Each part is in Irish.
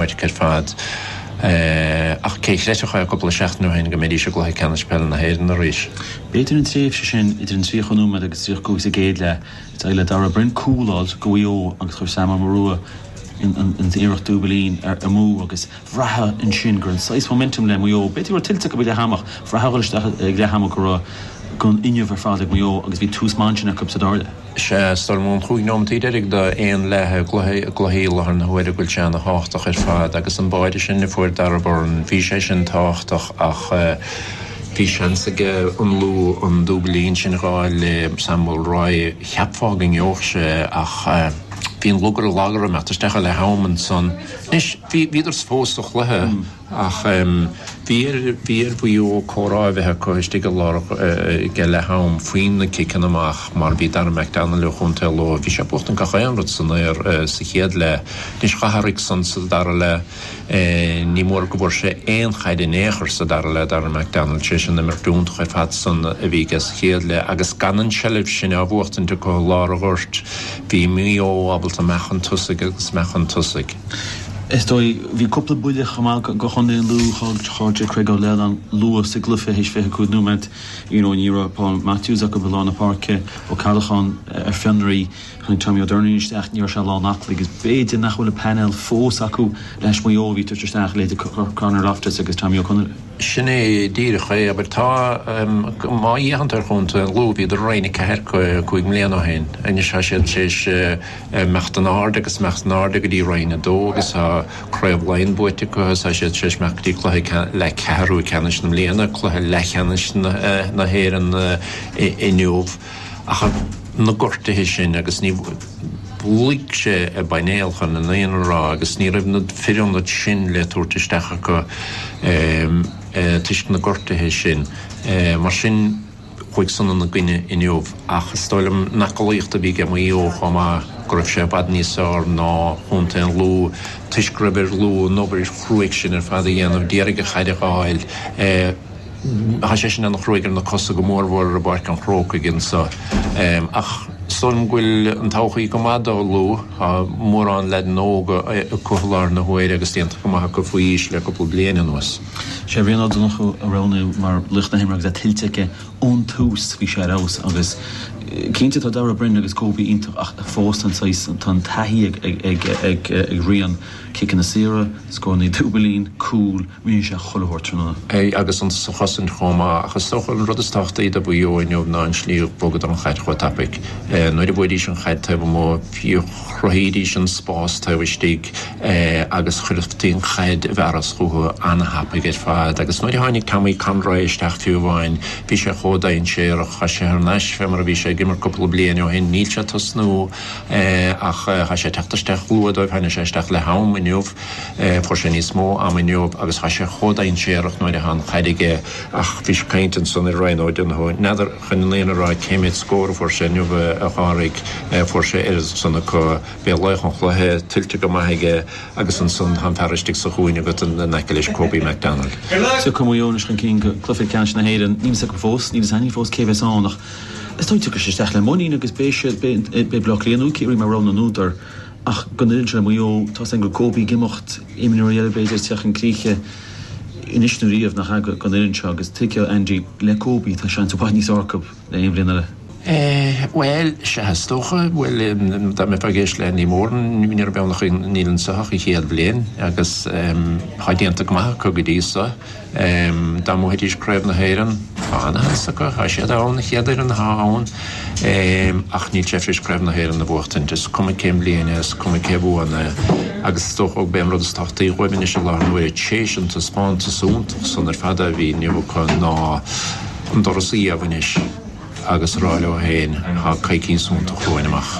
Maidhc ar fad. Ach cé chreidfeadh é cúpla seachtain ó shin go mbeidís i gCluiche Ceannais Peile na hÉireann arís? B'fhéidir an tréimhse sin idir an 30 nóiméad agus an 35 sa gcéad leath. D'éirigh le Darragh Beirne cúl a fháilt do Mhaigh Eo agus chuir Sam Mulroy an iarracht dúbailín amú agus bhraithfeá ansin go raibh saghas momentum le Maigh Eo. B'fhéidir go raibh tuillte acu ag leath ama ach bhraithfeá ag dul isteach ag leath ama go raibh an fuinneamh ar fad ag Maigh Eo agus bhí tús maith ansin acu sa dara leath. Is ea, is dóigh liom an chúig nóimeataí deiridh d'aon leath i gcluiche i láthair na huaire go bhfuil sé ana thábhachtach ar fad agus an báide sin a fuair Darragh Beirne, bhí sé sin tábhachtach ach bhí seans aige an Lú an dúbailín sin a fháil le Sam Mulroy, cheapfá go ngeobhadh sé ach bhí an lug ar an lag orthu ag imeacht isteach leath am ansan. Anois, bhíodar fós sa chluiche. Ach bhí ar Mhaigh Eo comhrá a bheith acu istigh i lár aige leath am faoi na ciceanna amach mar bhí Dara McDonnell ó chontae Lú, bhí sé ag buachtaint gach aon rud san aer sa chéad leath. Anois d'athraigh san sa dara leath. Ní mór go bhfuair sé aon chaid in aon chor sa dara leath, Dara McDonnell, théis an imirt iontach ar fad san a bhí aige sa chéad leath agus gan an tseilbh sin á bhuachtaint acu i lár an ghoirt, bhí Maigh Eo ábalta imeacht chun tosaigh agus imeacht chun tosaigh. is dóigh. Bhí cúpla buille chomh maith do chontae an Lú, chailleadar Craig Lennon luath sa gcluiche théis 25 nóiméad you know ní raibh Paul Matthews acu i lár na páirce Ó Ceallacháin ar fionraí tháinig Tommy Ó Doirnín isteach ní raibh sé lán aclaí agus b'fhéidir nach bhfuil an painéal fós acu le hais Maigh Eo a bhí ag tabhairt isteach leithéidí Conor Loftus agus Tommy Conroy. Sin é díreach é, abair. Tá, má fhéachann tú ar chontae an Lú bhíodar i Roinn a Ceathair cúig mbliana ó shin, anois tá siad théis, imeacht in airde agus imeacht in airde go dtí Roinn 2 agus tá Craobh Laighean buaite acu agus tá siad tar éis imeacht go dtí cluiche leath, ceathrú ceannais na mbliana cluiche leathcheannais na hÉireann inniu ach na gortuithe sin agus ní luig sé i bpainéal chun an fhírinne a rá agus ní raibh na fir ionaid sin le tabhairt isteach acu toisc na gortuithe sin mar sin chuaigh san ina gcoinne inniu, ach is dóigh liom an aclaíocht a bhí aige Maigh Eo chomh maith, go raibh sé i bhfad níos fearr ná chontae an Lú toisc go raibh ar Lú an obair chruaidh sin ar fad a dhéanamh, d'iarraidh an chaid a dh'fháil. Tá sé sin ana chruaidh ar na cosa, go mór mhór i bPáirc an Chrócaigh anso. Ach is dóigh liom go bhfuil an todhchaí go maith do Lú, tá mórán leaideanna óga acu i láthair na huaire agus déanta go maith acu faoi aois le cúpla bliain anuas. Sé Rian Ó Donnchú a roghnaíodh mar laoch na himeartha agus é tuillte aige ón tús. Bhí sé ar fheabhas agus cinnte tá Darragh Beirne agus Kobe iontach ach fós tá an saghas, tá an taithí ag Rian, ciceanna saora, scórannaí dúbailín, cúl, rinne sé chuile shórt tráthnóna. Agus iontach sa chosaint chomh maith ach is dócha an rud is tábhachtaí do Mhaigh Eo inniu ná an slí a bhogadar an chaid chomh tapaidh. Nuair a bhuaidís an chaid taobh amuigh chruthaídís an spás taobh istigh. é agus cuirtí an chaid i bhfearas chuchu ana-thapaidh ar fad, agus nuair a tháinig Tommy Conroy isteach fiú amháin, bhí sé chomh dainséarach. Thá sé thar n-ais fé mar a bhí sé ag imirt cúpla bliain ó shin. Níl sé ag tosnú ach thá sé ag teacht isteach luath dóibh. Tháinig sé isteach le ham inniu, fuair sé níos mó ama inniu agus thá sé chomh dainséarach nuair athá an chaid aige, ach bhí caint ansan ar Ryan O'Donoghue, n'fheadar, chun na fírinne a rá cé méid scór a fuair sé inniu a Phádraig, fuair sé oiread san acu. Beidh laoch an chluiche tuillte go maith aige agus ansan tá an fear istigh sa chúinne agat in aice leis, Kobe McDonald. Sea, tá Maigh Eo chun cinn go cluiche ceannais na hÉireann. Níl fhios agam fós, níl fhios againn fós cé a bheas ann ach is dóigh tiocfaidh sé isteach le muinín agus beidh sé, beidh Baile Átha Cliath nó Ciarraí mar rogha na n-údar ach go n-oireann seo le Maigh Eo, tá's acu go Kobe ag imeacht, imreoirí eile b'fhéidir ag teacht chun críche anois nó riamh nach ea go n-oireann seo agus tuigfidh Andy le Kobe tá seans i bhfad níos fearr acu. le aon bhliain eile? Bhuel, sea, is dócha, bhuel, dá mbeifeá ag éisteacht le Andy Moran, ní raibh beann acu Níl in Soitheach an chéad bhliain agus tá déanta go maith acu go dtí so. Dá mbuafaidís Craobh na hÉireann, tá an-áthas acu, tá siad ann, an chéad fhoireann atá ann, ach níl sé tar éis Craobh na hÉireann a bhuachtaint, is cuma cén bhliain é, is cuma cé a bhuann é. Agus is dócha gurb é an rud is tábhachtaí dhóibh anois i láthair na huaire, tar éis an taispeántas iontach san ar fad a bhí inniu acu, ná, an doras a iamh anois agus a rá leo féin, tá coicíos suntasach romhainn amach.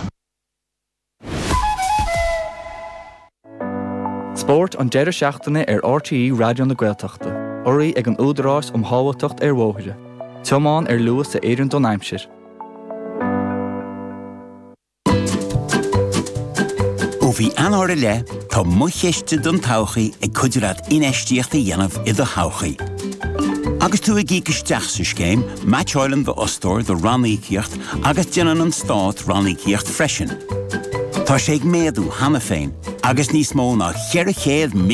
Spórt an deireadh seachtaine ar RTÉ Raidió na Gaeltachta, urraithe ag an Údarás um Shábháilteacht ar Bhóithre, tiomáin ar luas a oireann don aimsir. Ó mhí Eanáir i leith, tá Mo Chiste don Todhchaí ag cuidiú leat infheistíocht a dhéanamh i do thodhchaí. Agus tú ag íoc isteach sa scéim, meaitseálann d'fhostóir do ranníocaíocht agus déanann an Stát ranníocaíocht freisin. Tá sé ag méadú cheana féin agus níos mó ná 400